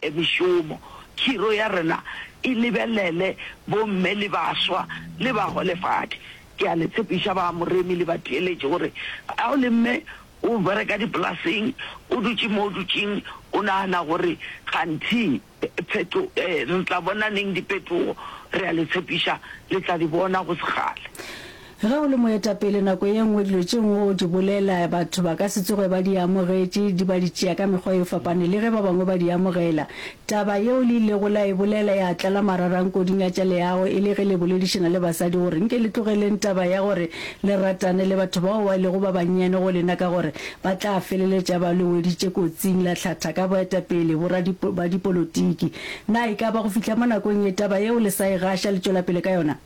e mešomo, khiro ya rena e lebelele bomme le baswa le baholefadi. Ke a le tshepiša ba Moremi le batheeletši gore ga o le mme o bereka dipolaseng, o dutše mo o dutšeng, o nagana gore kganthe pheto, re tla bona neng dipetogo, re a le tshepiša le tla di bona go segale. Ge o le moetapele, nako ye nngwe dilo tše nngwe o di bolela, batho ba ka se tsoge ba di amogetše, di ba di tšea ka mekgwa e fapaneng le ge ba bangwe ba di amogela. Taba yeo le ilego la e bolela ya tlala mararang koding ya tša leago e le ge le boledišana le basadi gore nke le tlogeleng taba ya gore le ratane le batho bao ba lego ba bannyane go lena ka gore ba tla feleletša ba le weditše kotsing. La hlatha ka boetapele ba dipolotiki. Na e ka ba go fihla mo nakong ye taba yeo le sa e gaša le tšwelapele ka yona?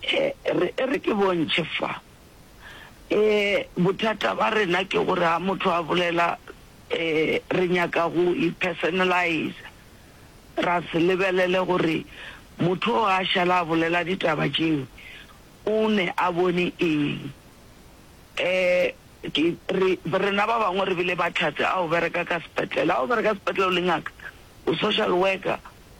E, re, e re ke bontšhe fa. E, bothata ba rena ke gore ha motho a bolela, e, re nyaka go i-personaliza. Ra se lebelele gore motho o a šala a bolela ditaba tšeo, o ne a bone eng. E, ke, re, rena ba bangwe re bile bahlatse, a o bereka ka sepetlele, a o bereka sepetlele o le ngaka, o social worker,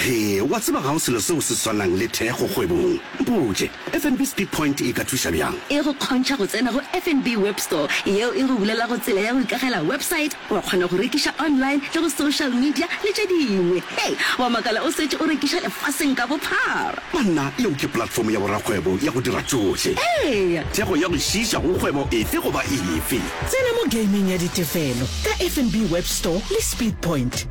Hee, wa tseba ga go selo seo se swanang le thekgo kgwebong. Mpotše, FNB Speed Point e ka thuša bjang? E go kgontšha go tsena go FNB Web Store, yeo e go bulelago tsela ya go ikagela website, wa kgona go rekiša online le go social media le tše dingwe. Hei, wa makala o setše o rekiša lefaseng ka bophara! Banna, yeo ke platform ya borakgwebo ya go dira tšohle. Eya! Thekgo ya go šiiša go kgwebo efe goba efe. Tsena mo gaming ya ditefelo ka FNB Web Store le Speed Point.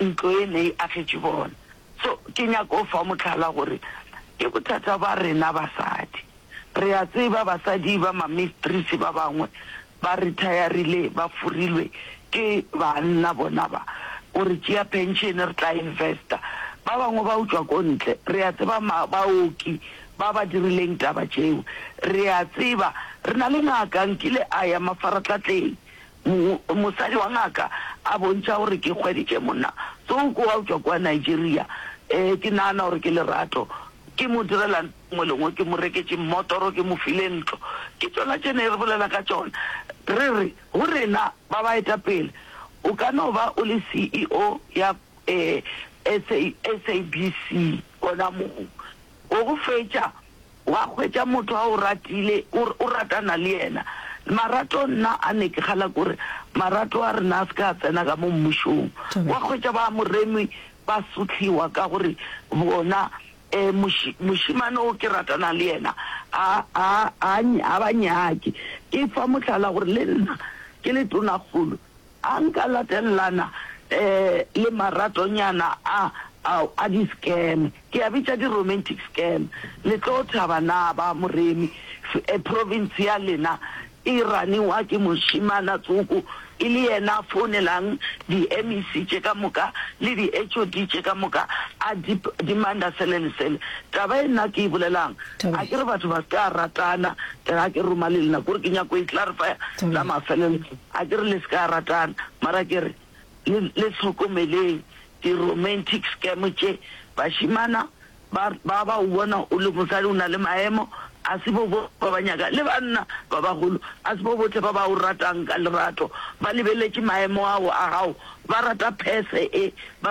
ntlo e ne e agetše bona. So ke nyaka go fa mohlala gore ke bothata ba rena basadi. Re a tseba basadi ba mamistris ba bangwe ba retirile ba furilwe ke banna bona ba go re tšea pension re tla investa. Ba bangwe ba utšwa ko ntle. Re a tseba baoki ba ba dirileng taba tšeo. Re a tseba re na le ngaka nkile a ya mafaratlhatlheng Mosadi wa ngaka a bontšha gore ke hweditše monna tsoko wa go tšwa kua Nigeria. Ee, ke nagana gore ke lerato. Ke mo direla ntho e nngwe le e nngwe, ke mo reketše mmotoro, ke mo file ntlo. Ke tšona tše ne re bolela ka tšona. Re re go rena ba baetapele, O ka no ba o le CEO ya SABC gona moo. Go go fetša, Wa hwetša motho a o ratile, o, o ratana le yena. Marato, nna a ne ke kgala ke gore marato a rena a se ka a tsena ka mo Mmušong. Thobela. Wa hwetša ba Moremi ba sotlhiwa ka gore bona, e, moši, mošemane o ke ratana le yena a, a, a, ny-, a ba nyake. Ke fa mohlala gore le nna ke le tonakgolo, A nka latelelana le maratonyana a ao a di scam, ke a bitša di romantic scam. Le tlo thaba na ba Moremi? Province ya lena e raniwa ke mošemana tsoko, e le yena a founelang di MEC tše ka moka le di HOD tše ka moka a demander sele le sele. Taba ye nna ke e bolelang, a ke re batho ba se ka ratana, le ga ke roma le lena, kore ke nyako e clarifya la mafelelo. A ke re le se ka ratana, mara ke re le le hlokomeleng di romantic scam tše. Bašimana ba ba ba o bona o le mosadi o na le maemo, a se bo bohle ba ba nyaka le banna ba bagolo a se bo bohle ba ba o ratang ka lerato ba lebeletše maemo ao a gago, ba rata purse e.